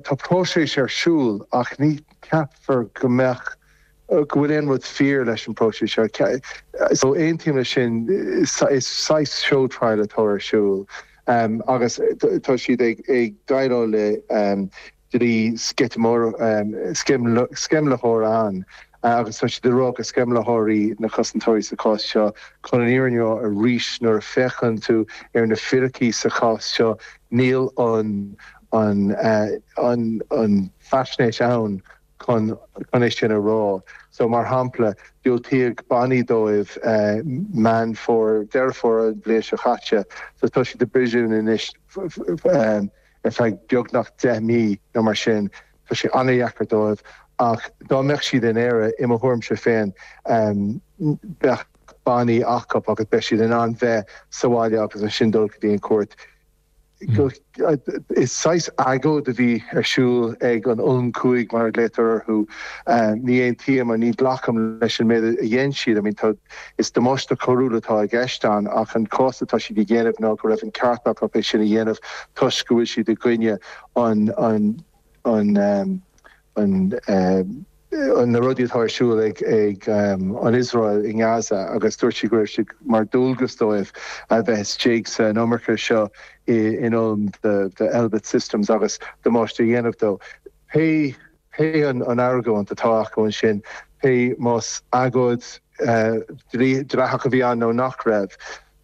Tá próiseas ar siúl ach ní cheapfá go mbeadh, go bhfuil aon rud fíor leis an bpróiseas seo. So aontaím leis sin, is saghas show trial atá ar siúl agus tá siad ag déileáil le dlí sceimhlitheora ann. agus tá siad ag rá gur sceimhlitheoirí na cosantóirí sa chás seo. Chun an fhírinne a rá, arís, nuair a féachann tú ar na fíricí sa chás seo, níl an faisnéis ann chun é sin a rá. So, mar shampla, diúltaíodh bannaí dóibh Meán Fómhair, Deireadh Fómhair an bhliain seo caite, so tá siad i bpríosún anois ar feadh beagnach deich mí nó mar sin. Tá sé an-deacair dóibh ach dá mbeadh siad in Éire, i mo thuairimse féin, bheadh bannaí acu agus bheadh siad in ann bheith sa bhaile agus ansin dul go dtí an chúirt. Is saghas agóid a bhí ar siúl ag an Ulm Cúig mar a ghlaotar orthu. Ní aontaím agus ní ghlacaim leis an méid a dhein siad. I mean is damáiste coiriúil atá i gceist ann ach an cás atá siad a dhéanamh ná go raibh an ceart acu é sin a dhéanamh toisc go bhfuil siad i gcoinne na rudaí atá ar siúl ag an Iosrael i nGaza agus dúirt siad go raibh sé mar dhualgas dóibh a bheith istigh sa mhonarcha seo in Ulm de Elbit Systems agus damáiste a dhéanamh dó. Pé an argóint atá acu ansin, pé más agóid dleathach a bhí ann nó nach raibh,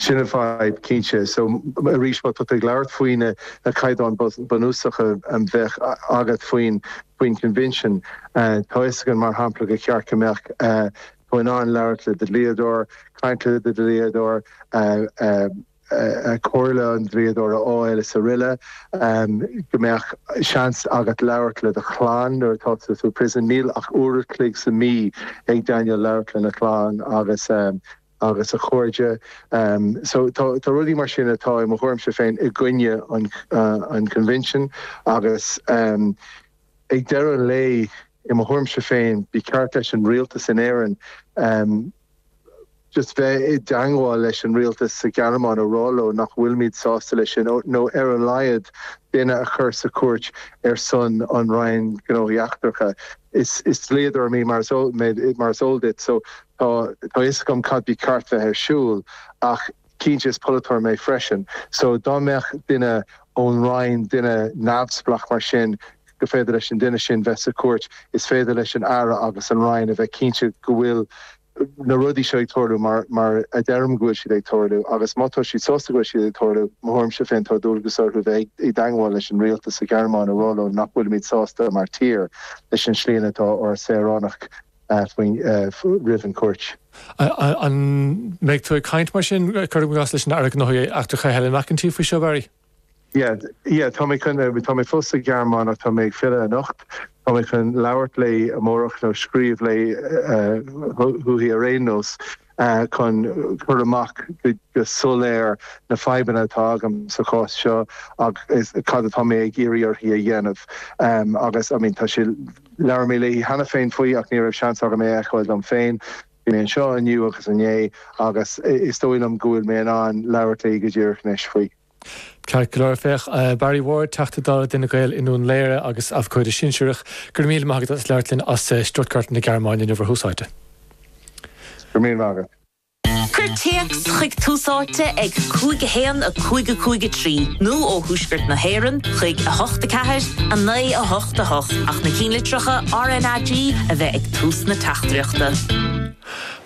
Sin an fadhb, cinnte. So, arís, má tá tú ag labhairt faoi na caighdeáin bunúsacha a bheadh agat faoin Convention, tá a fhios againn, mar shampla, gur cheart go mbeadh tú in ann labhairt le do dhlíodóir, caint le do dhlíodóir, comhairle an dlíodóir a fháil is araile, go mbeadh seans agat labhairt le do chlann nuair atá tú sa príosún. Níl ach uair a' chloig sa mí ag Daniel labhairt lena chlann agus agus a chairde. So, tá rudaí mar sin atá, i mo thuairimse féin, i gcoinne an Convention agus ag deireadh an lae, i mo thuairimse féin, ba cheart leis an Rialtas in Éirinn just bheith i dteangmháil leis an Rialtas sa Ghearmáin a rá leo nach bhfuilimid sásta leis sin nó ar a laghad duine a chur sa chúirt ar son an Roinn Gnóthaí Eachtracha. Is dlíodóir mé mar is eol duit. So, Tá a fhios agam cad ba cheart bheith ar siúl ach cinnte is polaiteoir mé freisin so dá mbeadh duine ón Roinn, duine neamhspleach mar sin, gur féidir leis an duine sin bheith sa chúirt, is féidir leis an Aire agus an Roinn a bheith cinnte go bhfuil na rudaí seo ag tarlú mar a deirim go bhfuil siad ag tarlú agus má tá siad sásta go bhfuil siad ag tarlú, mo thuairimse féin, tá dualgas orthu bheith i dteangmháil leis an Rialtas sa Ghearmáin a rá leo nach bhfuilimid sásta mar tír leis an slí ina atá ár saoránach. faoi, roimh an gcúirt. An mbeidh tú ag caint mar sin, cuirim i gcás, leis an Aire Gnóthaí Eachtracha Helen McEntee faoi seo, Barry? Yeah, yeah, tá mé, tá mé fós sa Ghearmáin ach tá mé ag filleadh anocht. Tá mé chun labhairt léi amárach nó scríobh léi, uaithi ar aon nós. chun cur amach go soiléir na fadhbanna atá agam sa chás seo agus cad atá mé ag iarraidh uirthi a dhéanamh agus I mean tá sé labhair mé léi cheana féin faoi ach ní raibh seans agam é a fheiceáil dom féin. Bhí mé anseo inniu agus inné agus is dóigh liom go bhfuil mé in ann labhairt léi go díreach anois faoi. Ceart go leor, féach Barry Ward, Teachta Dála d'Fhine Gael i nDún Laoghaire agus Abhcóide Sinsearach. Go raibh míle maith agat as labhairt linn as Stuttgart na Gearmáine inniu ar Thús Áite. Go raibh míle maith agat. Cuir téacs chuig Tús Áite ag 5 1 5 5 3 nó ó Thuaisceart na hÉireann chuig 8 4 9 8 8 ach na cinnlitreacha RnaG a bheith ag tús na teachtaireachta.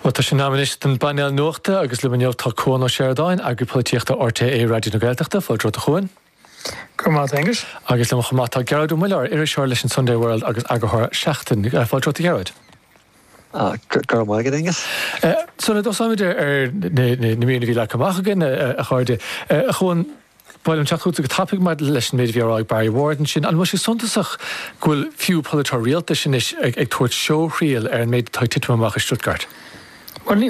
Bhuel, tá sé in am anois don bpainéal nuachta agus liom inniu tá Cuan Ó Seireadáin, Eagraí Polaitíochta RTÉ Raidió na Gaeltachta. Fáilte romhat a Chuain. Go raibh maith a't, a Aonghuis. Agus liom chomh maith tá Gearóid Ó Muilleoir, iriseoir leis an Sunday World agus eagarthóir Seachtain. Fáilte romhat a Ghearóid. Go raibh maith agat, a Aonghuis. So, sula dtosnaímid ar na míreanna a bhí leagtha amach againn, a chairde. A Chuain. Bhuel, ag teacht chugat go tapaidh, maidir leis an méid a bhí á rá ag Barry Ward ansin, an bhfuil sé suntasach go bhfuil fiú polaiteoir rialtais anois ag tabhairt seóthriail ar an méid atá ag titim amach i Stuttgart? Bhuel, ní